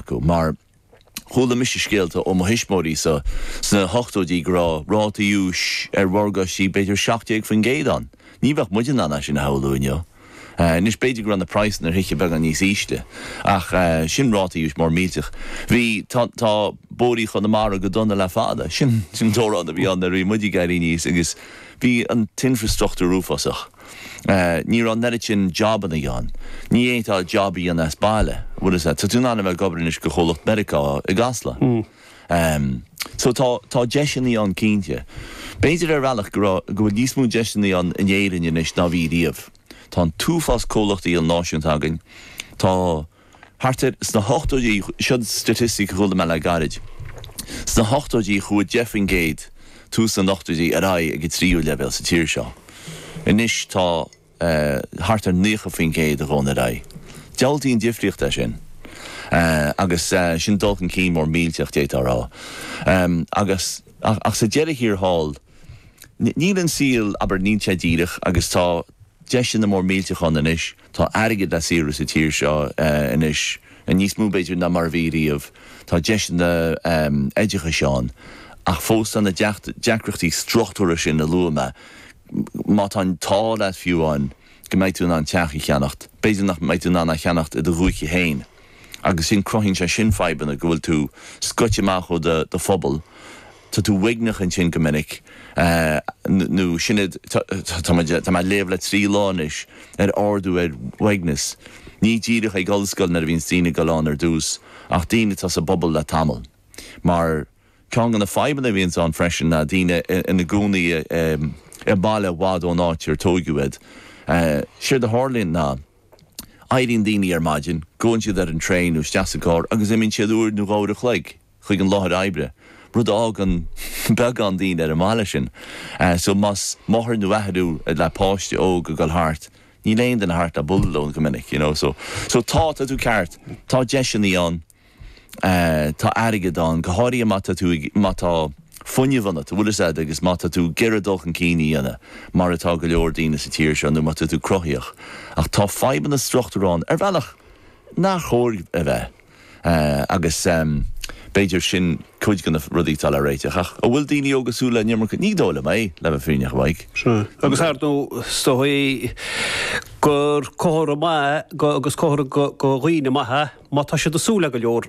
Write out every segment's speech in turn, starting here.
acu. Mar chuala mise scéalta ó mo thuismeoirí sa sna hochtóidí go raibh rátaí úis ar mhorgáistí b'fhéidir 17% ann. Ní bheadh muid in ann é sin a shamhlú inniu. Anois b'fhéidir go raibh na praghsanna ar thithe beagán níos ísle ach sin rátaí úis mór millteach. Bhí, tá, tá bóithrí Chonamara go dona le fada. Sin, sin an t-amhrán a bhí ann nuair a bhí muid ag éirí aníos agus bhí an t-infreastruchtúr uafásach. Ní raibh an oiread sin jobannaí ann. Ní fhéadfá job a dhéanamh as baile. Bhuel is ea. Tá tú in ann a bheith ag obair anois go chomhlacht Meiriceá i gCasla. So tá, tá deiseannaí ann cinnte. B'fhéidir ar bhealach go raibh, go bhfuil níos mó deiseannaí ann in Éirinn anois ná bhí riamh. Tá an t-uafás comhlachtaí ilnáisiúnta againn. Tá. Thart ar sna hochtóidí, seo staitistic a chuala mé le gairid, sna hochtóidí chuaigh 10 faoin gcéad, tús na n-ochtóidí, ar aghaidh ag an tríú leibhéal sa tír seo. Anois tá thart ar 90 faoin gcéad a ghabhann ar aghaidh. Diabhaltaí an difríocht é sin. Agus sin dul chun cinn mór millteach d'fhéadfá a rá. Agus ach sa deireadh thiar thall, níl an saol, abair, níl sé díreach agus tá deiseanna mór millteach ann anois. Tá airgead á saothrú sa tír seo anois, níos mó b'fhéidir ná mar a bhí riamh. Tá deiseanna oideachais ann. Ach fós tá na deacrachtaí struchtúrtha sin a luaigh mé. Má tá an t-ádh leat fiú amháin go mbeidh tú in ann teach a cheannacht, b'fhéidir nach mbeidh tú in ann é a cheannacht i do dhúiche féin. Agus sin cruthaíonn sé sin fadhbanna go bhfuil tú scoite amach ó do phobal. Tá tú uaigneach ansin go minic. Nó sin é, tá mé ag léamh le trí lá anois ar ardú ar uaigneas. Ní díreach ag ollscoil nuair a bhíonns daoine ag dul ann ar dtús, ach daoine atá sa bpobal le tamall. Mar ceann de na fadhbanna a bhíonns ann freisin ná daoine ina gcónaí i mbaile i bhfad ón áit ar tóigeadh iad. Séard a tharlaíonn ná, éiríonn daoine ar maidin, gabhann siad ar an traein nó isteach sa gcarr agus imíonn siad uair nó dhá uair a chloig. chuig an láthair oibre, rud a fhágann beagán daoine ar an mbaile sin. So más máthair nó athair thú le páiste óg ag dul thart, níl aon duine thart le bualadh leo go minic, you know. So, so tá, tá tú ceart, tá deiseannaí ann, tá airgead ann, go háirithe má tá tú, má tá fuinneamh ionat, an bhfuil 'fhios a'd, agus má tá tú ag iarraidh dul chun cinn a dhéanamh, mar atá go leor daoine sa tír seo, nó má tá tú cruthaitheach. Ach tá fadhbanna struchtúir ann, ar bhealach, nár chóir a bheith. Agus b'fhéidir sin cuid de na rudaí atá le réiteach. Ach an bhfuil daoine óga ag súil le an iomarca? Ní dóigh liom é, le bheith fírinneach, a Mhaidhc. Agus ar ndóigh, is dóigh gur comhartha maith agus comhartha go dhaoine maithe má tá siad ag súil le go leor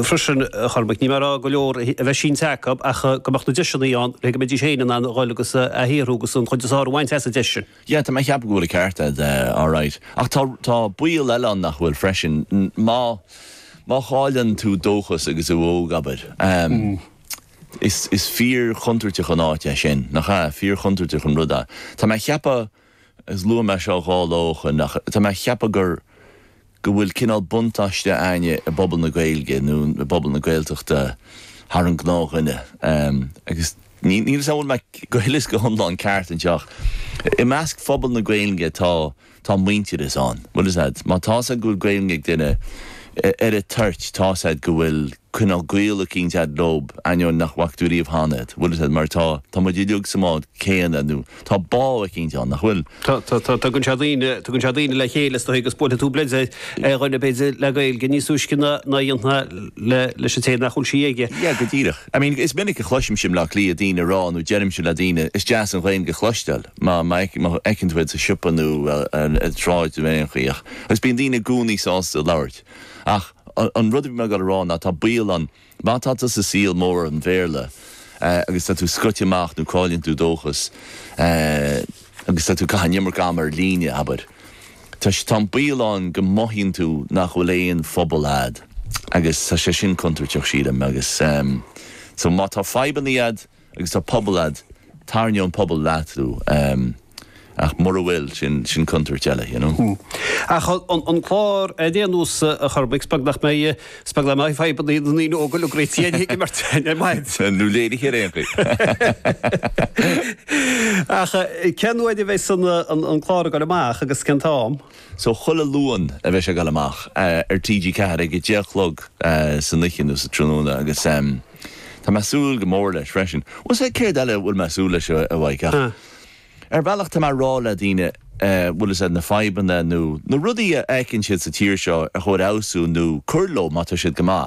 freisin, a Chormaic. Níl mé ag rá go leor a bheith sínte acu ach go mbeadh na deiseanna ann le go mbeidís féin in ann a dhul agus a shaothrú agus an chuid is fearr a bhaint as an deis sin. Yeah, tá mé a cheapadh go bhfuil an ceart a'd, alright. Ach tá, tá baol eile ann nach bhfuil freisin. Má, má chailleann tú dóchas agus tú óg, abair, is, is fíor-chontúirteach an áit é sin, nach ea? Fíor-chontúirteach an rud é. Tá mé a cheapadh, agus luaigh mé seo dhá lá ó shoin, ach tá mé a cheapadh gur, go bhfuil cineál buntáiste againne i bpobal na Gaeilge nó i bpobal na Gaeltachta thar an gnáthdhuine. Agus níl fhios a'm an bhfuil mé go huile is go hiomlán ceart anseo ach i measc phobal na Gaeilge tá tá muintearas ann. Bhfuil fhios a'd, má tá fhios a'd go bhfuil Gaeilge ag duine ar a' toirt tá fhios a'd go bhfuil cineál gaol eicínt a'd leob ainneoin nach bhfaca tú ariamh cheana iad, bhfuil fhios a'd, mar tá tá muid uilig sa mbád céanna nó Tá bá eicínt ann nach bhfuil. Tugann sé daoine, tugann sé daoine le chéile is dóigh agus buailfidh tú bleid ar dhuine b'fhéidir le Gaeilge níos túisce ná a dhéanfá leis an té nach bhfuil sí aige. Yeah, go díreach. I mean, is minic a chloisimse i mBleá Cliath daoine ag rá nó deirimse le daoine, is deas an Ghaeilge a chloisteáil má fheiceann tú iad sa siopa nó ar an tsráid nó ar aon chaoi ach, agus bíonn daoine i gcónaí sásta labhairt. Ach an rud a bhí mé ag goil a rá ná tá baol ann, Má tá tú sa saol mór an Bhéarla agus tá tú scoite amach nó cailleann tú dóchas agus tá tú ag caitheamh an iomarca ama ar líne, abair, tá an baol ann go mothaíonn tú nach bhfuil aon phobal agat agus tá sé sin contúirteach sílim agus so má tá fadhbanna agat, Agus tá pobal a'd. Tairneoidh an pobal leo thú. Ach mura bhfuil, sin, sin contúirt eile, you know. Ach an clár féin anois a Chormaic, 's beag nach mbeidh, 's beag nach mbeidh fadhbanna ag na ndaoine óga le Gracie Annie ag imirt ar maidin. Nó léirithe ar aon chaoi. Ach cén oíche a bheas an, an clár ag goil amach agus cén t-am? So chuile Luan a bheas sé ag goil amach ar TG4 ag a deich a chlog san oíche nó sa tráthnóna agus. Tá mé ag súil go mór leis freisin. Bhfuil fhios a'd céard eile a bhfuil mé ag súil leis a Mhaidhc ach ar bhealach tá mé ag rá le daoine, bhfuil fhios a'd, na fadhbanna nó na rudaí a fheiceann siad sa tír seo ar chóir a fheabhsú nó cur leo má tá siad go maith.